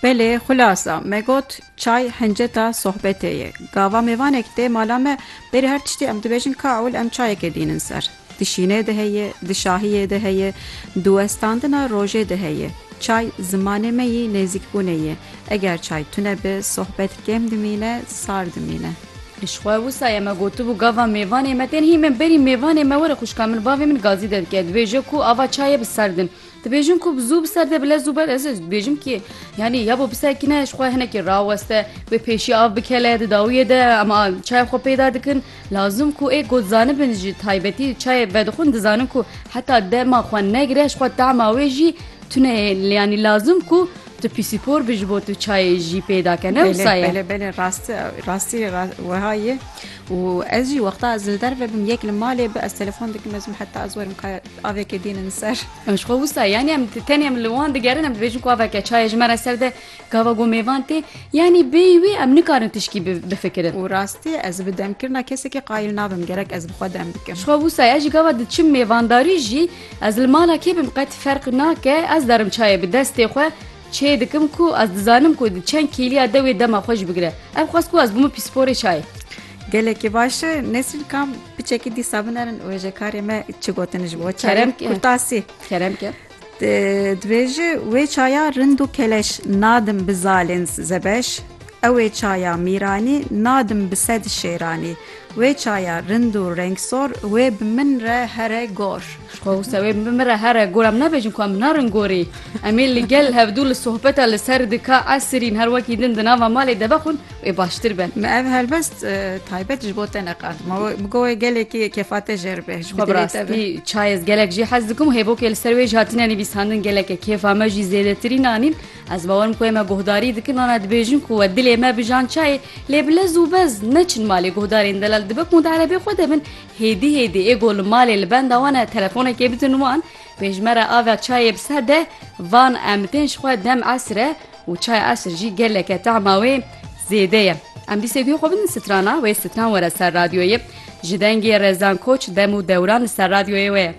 Belê, xulasa me got çay hinceta sohbetê ye. Gava mêvanek tê mala me, berî her tiştî em dibêjin ka ewil em çayekê dînin ser. Di şînê de heye, di şahiyê de heye, di westandina rojê de heye. Çay zimanê me yî nêzîkbûnê ye. Eger çay tune be, sohbet kêm dimîne, sar dimîne. Ji xwe wisa ye me gotibû gava mêvanê me tên hîmen berî mêvanê me were xwişka min bavê min gazî de dike dibêje ku ava çayê bi serdin. Dibêjin ku bi zû bi ser de bile zû ber ez dibêjim kî yanî ya bo bisekîne ji xwe hinekî raweste wê pêşî av bikele di dawiyê de em çayê xwe peyda dikin lazim ku ê got zanibin ji taybetî çayê vedixwin dizanin ku heta dema xwe negire ji xwe tema wê jî tune yê yanî lazim ku tu pîsîpor bi ji bo tu çayê jî peyda ke ne wisa belê rastî rastî weha ye û ez jî wexta ez li derve bim yek li malê bi ez telefon dikim ez heta ez werim ka Avêkê dînin ser. Em ji xwe wisa yanî em tenê em li wan digerin em dibêjin ku aveke çayê ji me re ser de gava ku mêvan tê yanî bêyî wê em nikarin tişkî bifikirin. Û rastî ez bi demkirina kesekî qayîl nabim gerek ez bi xwe dem bikim. Ji xwe wisa ez ji gava diçim mêvandarî jî ez li mala kê bim qet ferq nake ez darim çayê bi destê xwe çê dikim ku ez dizanim ku di çend kîliya dewê dema xwe jî bigire. Ev xwest ku ez bûme pîsporê çayê. Gelekî baş e Nesrîn Kam bi çekî dîsa binerin wêjekarê me çi gotin ji bo Kerem Kurtasî Kerem ke Divê ji wê çaya rind û keleş nadim bi zalên zebeş Ew ê çaya mîranî nadim bi sed şêranî Wê çaya rind û rengsor wê bi min re here gor. Xwe wisa wê min re here gor em nabêjin ku em narin gorî. Em ê li gel hevdû li sohbeta li ser dika esirîn her wekî din di nava malê de vexwin wê baştir be. Me ev helbest taybet ji bo te neqand. Ma bi go wê gelekî kêfate jêr be. Xwe bi rastî çayez gelek jî hez dikim û hêvokê li ser wê jî hatine nivîsandin geleke kêfa me jî zêdetirîn anîn. Ez bawer im ku wê me guhdarî dikin ana dibêjin ku we dilê me bijan çayê lê bi lez û bez neçin malê guhdarên delal dibe ku di erebê xwe de bin. Hêdî hêdî ê ku li malê li benda wan e telefonekê bidin wan, pêşmera ava çayê bi ser de, van em tên ji xwe dem esr e û çaya esr jî geleke tehma wê zêde ye. Em dîsê guhê xwe bidin strana wê stran were ser radyoyê. Ji dengê Rezan Koç dem û dewran li ser radyoyê wê ye.